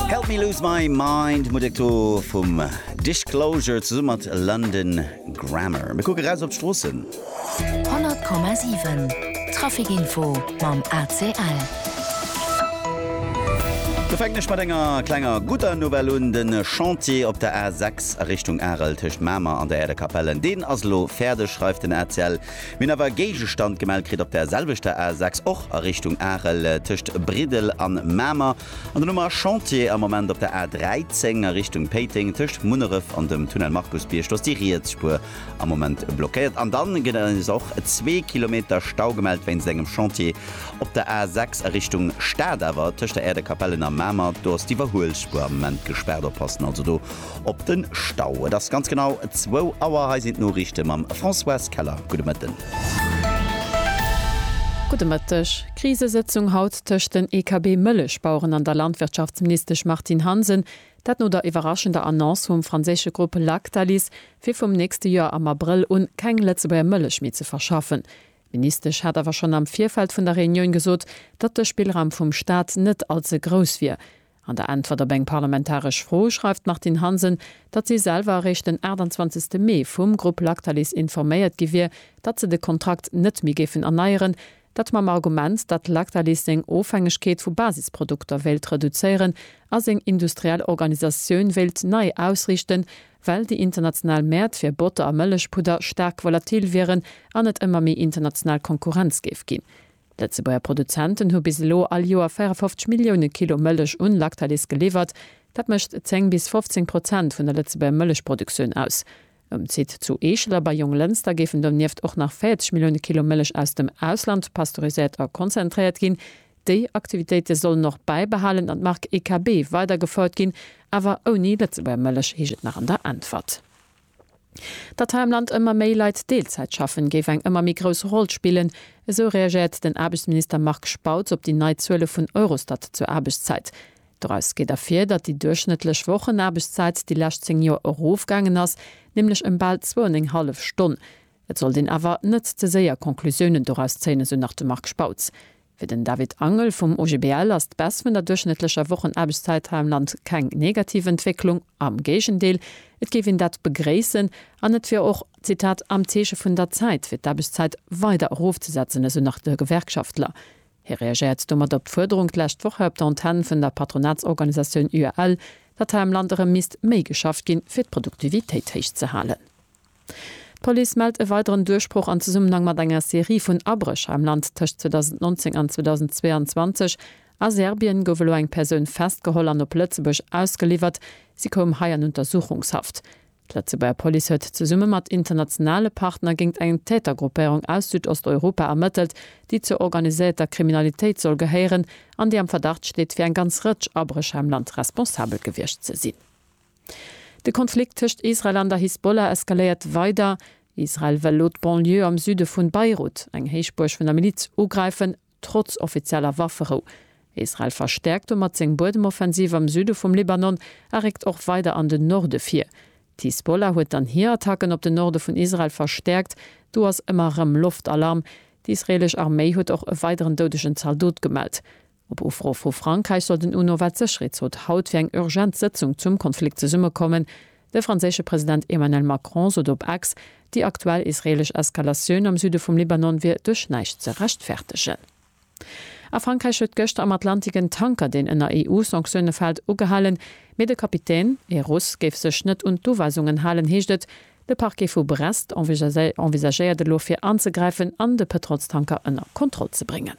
Help me lose my mind, Mudekto vum Disclosure zesumme mat London Grammar. Mir kucke raus op d'Stroossen. 100,7 Traficinfo mam ACL. Mir fänken ech mat enger klenger gudder Nouvelle un, de Chantier op der A6 a Richtung Arel tëscht Mamer an der Äerdekapellen, deen ass elo fäerdeg, schreift den ACL. Mir hunn awer e Géigestand gemellt kritt op der selwechter A6, och a Richtung Arel, tëscht Briddel an Mamer. An dann hu mer Chantier am Moment op der A13 a Richtung Péiteng, tëscht Munneref an dem Tunnel Markusbierg. Do ass déi riets Spuer am Moment blockéiert. An dann gëtt et eis och zwee Kilometer Stau gemellt wéinst engem Chantier op der A6 a Richtung Stad, awer tëscht der Äerdekapellen a Mamer. Do ass d'Iwwerhuelsspuer am Moment gespaart. Oppassen also do! Op den Stau. Et ass ganz genau zwou Auer. Hei sinn d'Noriichte mam Françoise Keller. Gudde Mëtten. Gudde Mëtteg. Krisesëtzung haut tëscht den EKB-Mëllechbaueren an der Landwirtschaftsministesch Martine Hansen. Dat no der iwwerraschender Annonce vum franséische Grupp Lactalis, fir vum nächste Joer am Abrëll un keng Lëtzebuerger Mëllech méi ze verschaffen. D'Ministesch hat awer schonn am Virfeld vun der Reunioun gesot, datt de Spillraum vum Staat net allze grouss wier. An der Äntwert op eng parlamentaresch Fro schreift d'Martine Hansen, datt si selwer eréischt den 28 Mee vum Grupp Lactalis informéiert gi wier, datt se de Kontrakt net méi géifen erneieren, dat mam Argument, datt Lactalis seng Ofhängegkeet vu Basisprodukter wéilt reduzéieren a seng industriell Organisatioun wéilt nei ausriichten, well déi international Mäert fir Botter a Mëllechpudder staark volatil wieren an et ëmmer méi international Konkurrenz géif ginn. D'Lëtzebuerger Produzenten hu bis elo all Joer 54 Millioune Kilo Mëllech un Lactalis geliwwert. Dat mécht 10 bis 15 Prozent vun der Lëtzebuerger Mëllechproduktioun aus. Um Site zu Eechel a bei Jonglënster géifen donieft och nach 40 Millioune Kilo Mëllech aus dem Ausland pasteuriséiert a konzentréiert ginn. Déi Aktivitéite sollen och bäibehalen an d'Mark EKB weider gefouert ginn, awer ouni Lëtzebuerger Mëllech, heescht et nach an der Äntwert. Datt hei am Land ëmmer méi Leit Deelzäit schaffen, géif eng ëmmer méi grouss Roll spillen, esou reagéiert den Aarbechtsminister Marc Spautz op déi nei Zuele vun Eurostat zur Aarbechtszäit. Doraus geet ervir, datt déi duerchschnëttlech Wochenaarbechtszäit déi lescht 10 Joer erofgaangen ass, nämlech ëm bal zwou an eng hallef Stonn. Et sollt een awer net ze séier Conclusiounen doraus zéien, esou nach de Marc Spautz. Fir den David Angel vum OGBL ass d'Baisse vun der duerchschnëttlecher Wochenaarbechtszäit hei am Land keng negativ Entwécklung, am Géigendeel, et géif een dat begréissen an et wier och, Zitat, am Zeeche vun der Zäit, fir d'Aarbechtszäit weider erofzesetzen, esou nach de Gewerkschaftler. Hie reagéiert domat op d'Fuerderung d'lescht Woch hei op der Antenn vun der Patronatsorganisatioun UAL, datt hei am Land erëm misst méi geschafft ginn, fir d'Produktivitéit héich ze halen. D'Police mellt e weideren Duerchbroch an Zesummenhang mat enger Serie vun Abrécher am Land. Tëscht 2019 an 2022 a Serbien gouf elo eng Persoun festgeholl an op Lëtzebuerg ausgeliwwert. Si koum hei an Untersuchungshaft. D'Lëtzebuerger Police huet zesumme mat internationale Partner géint eng Tätergruppéierung aus Südosteuropa ermëttelt, déi zur organiséierter Kriminalitéit soll gehéieren an déi am Verdacht steet, fir eng ganz Rëtsch Abrécher am Land responsabel gewiescht ze sinn. De Konflikt tëscht Israel an der Hisbollah eskaléiert weider. Israel wëll elo d'Banlieue am Süde vun Beirut, eng Héichbuerg vun der Miliz, ugräifen, trotz offizieller Wafferou. Israel verstäerkt domat seng Buedemoffensiv am Süde vum Libanon a réckt och weider an den Norde vir. D'Hisbollah huet dann hir Attacken op den Norde vun Israel verstäerkt. Do ass ëmmer erëm Loftalarm. D'israelesch Arméi huet och e weideren doudegen Zaldot gemellt. Op Ufro vu Frankräich soll den UNO-Weltsécherheetsrot haut fir eng urgent Sëtzung zum Konflikt zesummekommen. De franséische President Emmanuel Macron sot op X, déi aktuell israeelesch Eskalatioun am Süde vum Libanon wier duerch näischt ze rechtfertegen. A Frankräich huet gëschter am Atlantik en Tanker, deen ënner EU-Sanktioune fält, ugehalen, mee de Kapitän, ee Russ, géif sech net un d'Uweisungen halen, heescht et. De Parquet vu Brest envisagéiert elo fir anzegräifen an de Pëtrolstanker ënner Kontroll ze bréngen.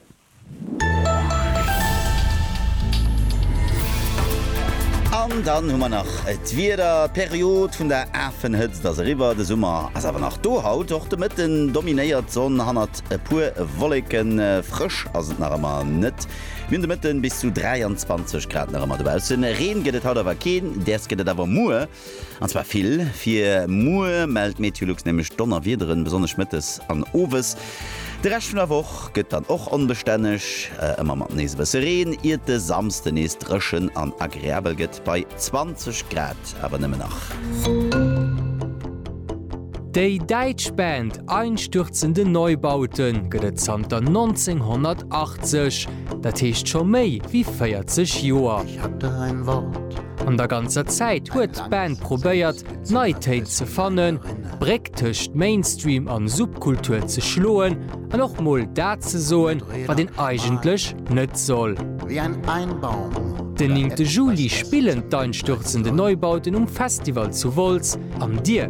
An dann hu mer nach d'Wieder, d'Period vun der Afenhëtzt ass eriwwer, de Summer ass awer nach do. Haut och de Mëtten dominéiert d'Sonn hannert e puer Wolleken, frësch ass et nach ëmmer net. Mir hunn de Mëtten bis zu 23 Grad nach ëmmer dobaussen. Reen gëtt et haut awer keen, däers gëtt et awer muer. An zwar vill. Fir muer mellt Meteolux nämlech Donnerwiederen, besonnesch mëttes an owes. De Rescht vun der Woch gëtt dann och onbestänneg, ëmmer mat nees e bësse Reen, iert de Samsde nees dréchen an agreabel gëtt, bei 20 Grad awer nëmmen nach. Déi däitsch Band Einstürzende Neubauten gëtt et zanter 1980, dat heescht scho méi wéi 40 Joer. An der ganzer Zäit huet d'Band probéiert, nei Téin ze fannen, d'Bréck tëscht Mainstream an Subkultur ze schloen an och mol dat ze soen, wat een eigentlech net soll. Den 9 Juli spillen d'Einstürzende Neubauten um Festival zu Wolz. An dir?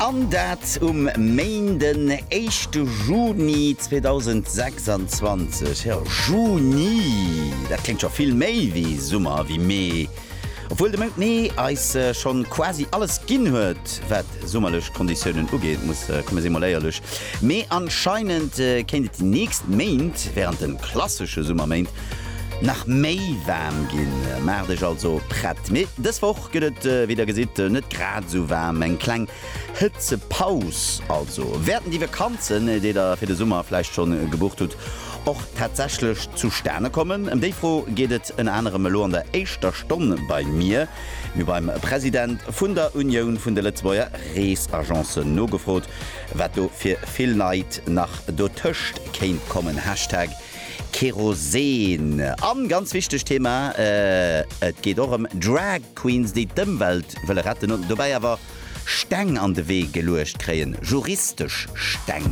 An dat um Main den éischte Juni 2026. Jo, Juni, dat kléngt scho vill méi wéi Summer, wéi Mee. Obwuel de Mount Mee eis schonn quasi alles ginn huet, wat summerlech Konditiounen ugeet, muss komme si mol éierlech. Mee anscheinend kéint et déi nächst Méint, wärend de klassesche Summerméint, nach méi waarm ginn. Maacht Iech also prett. Mee dës Woch Gëtt et, wéi der gesitt, net grad esou waarm, eng kleng Hëtzepaus also? Wäerten déi Vakanzen, déi der fir de Summer vläicht schonn gebucht hutt, och tatsächlech zustane kommen? Ëm déi Fro geet et ënner anerem elo an der éischter Stonn bei mir, mir beim President vun der Unioun vun de Lëtzebuerger Reesagencen nogefrot, wat do fir vill Neit nach dotëscht kéint kommen, Hashtag Kerosen. An ganz wichtegt Thema, et geet och ëm Drag Queens déi d'Ëmwelt wëlle retten an dobäi awer Steng an de Wee geluecht kréien, juristesch Steng.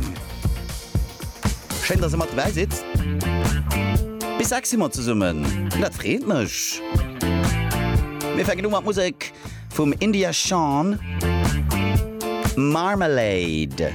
Schéin dass der mat dobäi sidd. Bis 6 si mer zesummen an dat freet mech. Mir fänken u mat Musek vum India Shawn, Marmalade.